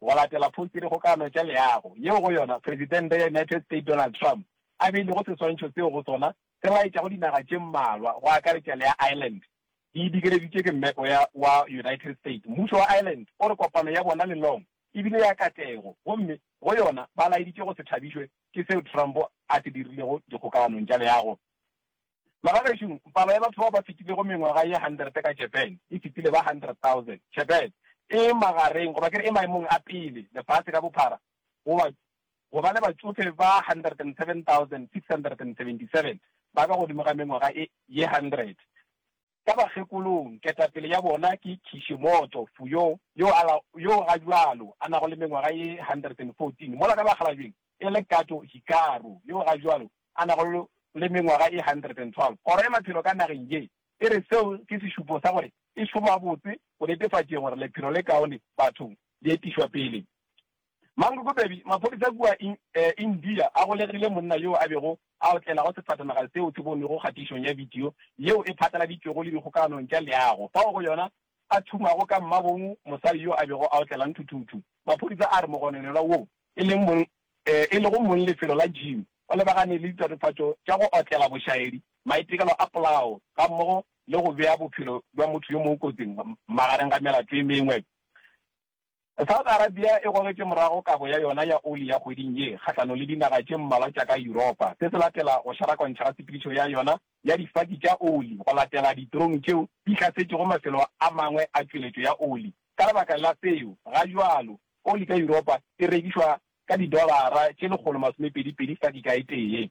go latela phoustiredikgokano tša leago yeo go yona Presidente ya United States Donald Trump a beilego seswantšho seo go sona se laetšago dinaga tše mmalwa go akaretša le ya Ireland di digeleditše ke mmepe wa United States. Mmušo wa Ireland o re kopano ya bona le Long e bile ya katlego gomme go yona ba laeditše go se thabišwe ke seo Trump a se dirilego dikgokaganong tša leago. Bagagešo, palo ya batho bao ba fetilego mengwaga ye hundred ka Japan e fetile ba hundred thousand. Japan e magareng, goba ke re e maemong a pele lefase ka bophara go ba go ba le batšofe ba hundred and seven thousand six hundred and seventy seven ba ka godimo ga mengwaga e ye hundred. ka bakgekolong, ketapele ya bona ke Kishimoto Fuyo yo a la, yoo ga bjalo a nago le mengwaga ye 114, mola ka bakgalabjeng e le Kato Hikaru yoo ga bjalo a nago le mengwaga ye 112. Kgoro ya Maphelo ka nageng ye e re seo ke sešupo sa gore e šoma botse go netefatšeng gore lephelo le kaone bathong le etišwa pele. Mangokopedi, Maphodisa kua India a golegile monna yo a bego a otlelago sefatanaga seo se bonwego kgatišong ya bidio yeo e phatlaladitšwego le dikgokaganong tša leago fao go yona a thumago ka mmabong mosadi yo a bego a otlela nthuthuthu. Maphodisa a re mogononelwa woo e leng mong e lego mong lefelo la gym o lebagane le ditatofatšo tša go otlela bošaedi, maitekelo a polao gammogo le go bea bophelo bja motho yo mongwe kotsing magareng ga melato e mengwe. Saudi Arabia e gogetše morago kabo ya yona ya oli ya kgweding ye kgahlano le dinaga tše mmalwa tša ka Yuropa, se se latela go šarakontšha ga tshepedišo ya yona ya difaki tša oli go latela ditrong tšeo di hlasetšego mafelo a mangwe a tšweletšo ya oli. Ka lebaka la seo, ga bjalo, oli ka Yuropa e rekišwa ka didolara tše lekgolo masomepedi-pedi faki ka e tee.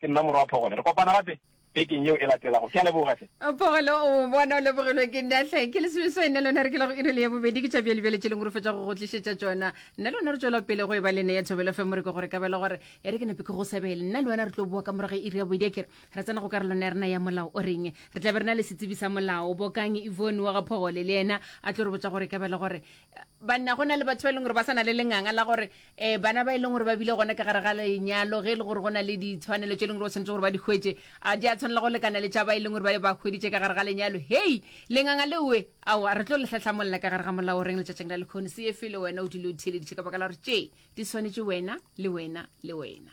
Ke nna morwa Phogole. Re kopana gape bekeng yeo e latelago. Ke a leboga hle. Phogole, O bona o lebogilwe ke nna hle. Ke lesome swae nne lona re kelago iri le ya bobedi. Ke tša bjale bjale tše leng re fetša go go tlišetša tšona. Nna le wena re tšwela pele go e ba le ne ya Thobela FM re ke gore ka bela gore e re ke nepe ke go sebele. Nna le wena re tlo boa ka morago ga iri ya bobedi a kere re tsena go karolwana ya rena ya molao o reng. Re tla be re na le setsebi sa molao Bokange Yvonne wa ga Phogole le yena a tlo re botša gore ka bela gore banna go na le batho ba e leng gore ba sa na le lenganga la gore um bana ba e leng gore ba bile gona ka gare ga lenyalo ge e le gore go na le ditshwanelo tse e leng gore ba tshwanetse gore ba di hwetse a di a tshwanela go lekana le tša ba e leng gore ba be ba hweditše ka gare ga lenyalo hei lenganga leoe ao a re tlo letlhatlhamolela ka gare ga molao reng letšatšing la lekgone se efe le wena o dile o theeleditše ka baka la gore tše di swanetše wena le wena le wena